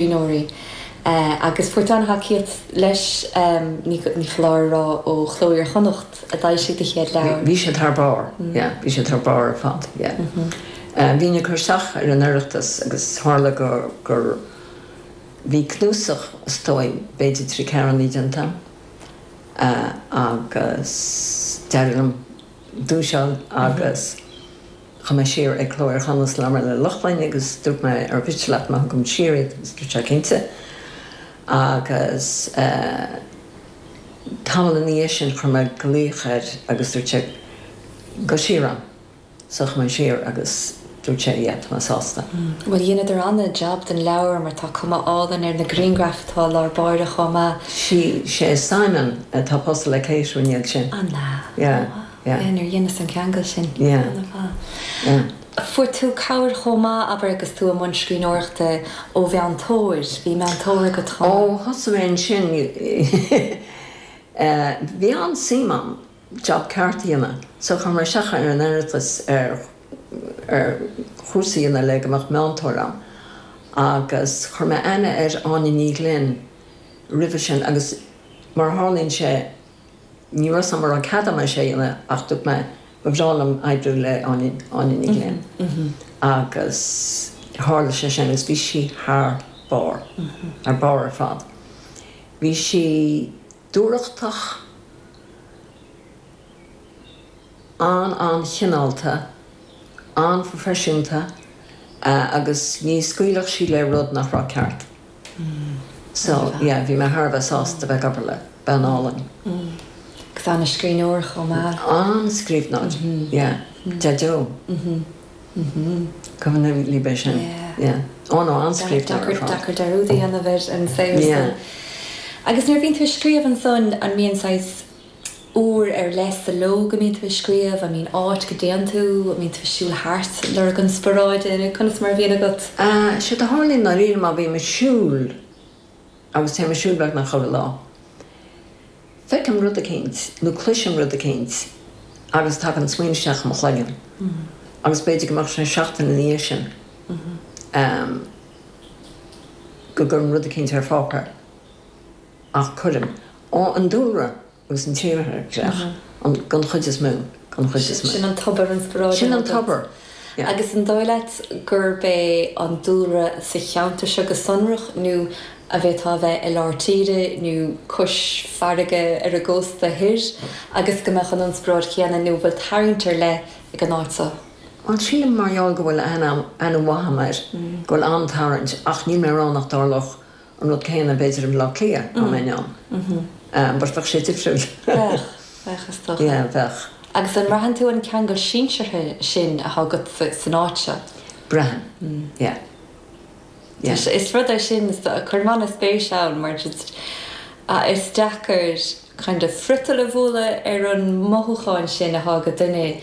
scríbhneoirí agus fuair an-tacaíocht leis. Ní foláir a rá ó Chló Iar-Chonnacht a d'fhoilsigh do chéad leabhar. Bhí siad thar barr, yeah, bhí siad thar barr ar fad, yeah. Bhínn ag cur isteach ar an Oireachtas agus tharla gur, bhí cnuasach, is dóigh, b'fhéidir trí ceathrúna déanta agam agus d'éirigh liom duais a fháil agus. Chuaigh mé siar ag Cló Iar-Chonnacht ag labhairt le Lochlainn agus dúirt mé ar mhiste leat má thugaim siar iad agus dúirt sé cinnte. Agus tamall ina dhiaidh sin chuir mé glaoch air agus dúirt sé gabh siar ann. So chuaigh mé siar agus dúirt sé yeah tá mé sásta. Bhuel dheineadar an-jab den leabhar mar tá cuma álainn ar na griangraif atá i lár báire chomh maith. Sea, is é Simon atá pósta le Kate, an iad sin? An ea? Yeah. Yeah. Nuair dheineas an ceangal sin. Yeah. Ar fad. Yeah. Fuair tú cabhair chomh maith, abair, agus tú i mbun scríbhneoireachta ó mheantóir. Bhí meantóir agat chomh maith. Ó thosaigh mé ansin bhí an-suim a'm job ceart a dhéanamh so chuir mé isteach ar an Oireachtas ar ar chúrsa a dhéanamh le go mbeadh meantóir a'm agus chuir mé aithne ar Áine Ní Ghlinn roimhe sin agus mar a tharlaíonn sé Ní raibh a fhios a'm an raibh an cead a'm é sin a dhéanamh ach dúirt mé ba bhreá liom oibriú le Áine, Áine Ní Ghlinn agus tharla sé sin agus bhí sí thar barr, thar barr ar fad. Bhí sí dúthrachtach, an-an-chineálta, an-phroifisiúnta agus ní scaoilfeadh sí le rud nach raibh ceart. So, yeah, bhí mé thar a bheith sásta bheith ag obair le bean álainn. Agus an-scríbhneoir chomh maith. An-scríbhneoir, yeah. Deaideo. Cuimhin liom libh é sin. Yeah. Ó no, an-scríbhneoir ar fad. Deacair dearúd a dhéanamh ar an saol. Yeah. Agus nuair a bhíonn tú ag scríobh ansan, an mbíonn saghas. uair ar leith sa ló go mbíonn tú ag scríobh, an mbíonn áit go dtéann tú, an mbíonn tú ag siúl thart ag lorg inspioráide, nó conas mar a bhíonn agat? Séard a tharlaíonn i ndáiríre má bhím ag siúl agus téim ag siúl beagnach chuile lá, feicim rud eicínt nó cloisim rud eicínt agus tagann smaoineamh isteach i mo chloigeann agus b'fhéidir go mbeadh sé seachtain ina dhiaidh sin go gcuirim rud eicínt ar pháipéar. Ach cuireann. Ó, an dúlra agus an tírdhreach, an, den chuid is mó, den chuid is mó. Sin an tobar inspioráide. Sin an tobar, yeah. Agus an dóigh leat gurb é an dúlra sa cheantar seo go sonrach nó an bhféadfá a bheith i lár tíre nó cois farraige ar an gcósta thoir agus go mbeadh an inspioráid chéanna nó an bhfuil tarraingt ar leith ag an áit seo? Bhuel, sílim mar gheall go bhfuil aithne mhaith agam air go bhfuil an-tarraingt ach níl mé ag rá nach dtarlódh an rud céanna b'fhéidir i mBleá Cliath dá mbeinn ann ach bheadh sé difriúil. Bheadh, bheadh is dócha. Yeah, bheadh. Agus an mbraitheann tú an ceangal sinseartha sin atá agat san áit seo? Braitheann, yeah. Yeah. Sea, is rud é sin, cuirim ana-spéis ann mar just is deacair kind of friotal a bhualadh ar an mothúchán sin atá agat, duine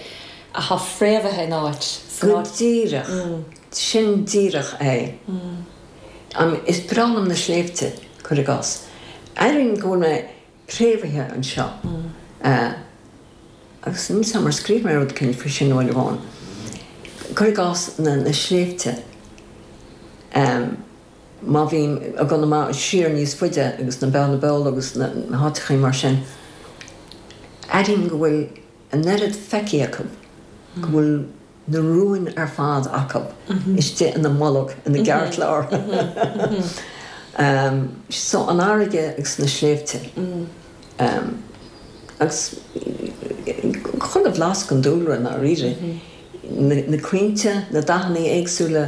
atá fréamhaithe in áit, san áit. Go díreach, sin díreach é. Is breá liom na sléibhte, cuir i gcás? Airím go bhfuil mé préamhaithe anseo. Agus níl 's agam ar scríobh mé rud eicínt faoi sin uair amháin. Cuir i gcás, na sléibhte. Má bhím i gConamara, siar níos faide agus na Beanna Beola agus na háiteachaí mar sin, airím go bhfuil an oiread feicthe acu go bhfuil, na rúin ar fad acu istigh ina mbolg ina gceartlár. So an fharraige agus na sléibhte agus chuile bhlas den dúlra i ndáiríre, na crainnte, na dathannaí éagsúla,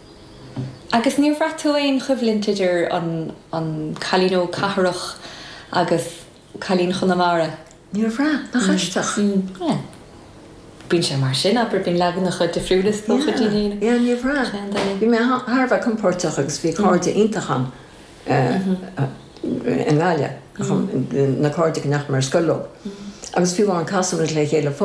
Agus níor bhraith tú aon choimhlint idir an an cailín óg cathrach agus cailín Chonamara? Níor bhraith, nach aisteach. Mm, mm, yeah. Bíonn sé mar sin, abair, bíonn leaganacha difriúla is dócha de dhaoine. Yeah, yeah, níor bhraith. Bhí mé thar a bheith compóirteach agus bhí cairde iontacha agam i nGaillimh, na cairde go ndeachaigh mé ar scoil leo. Agus fiú amháin casann muid le chéile fós.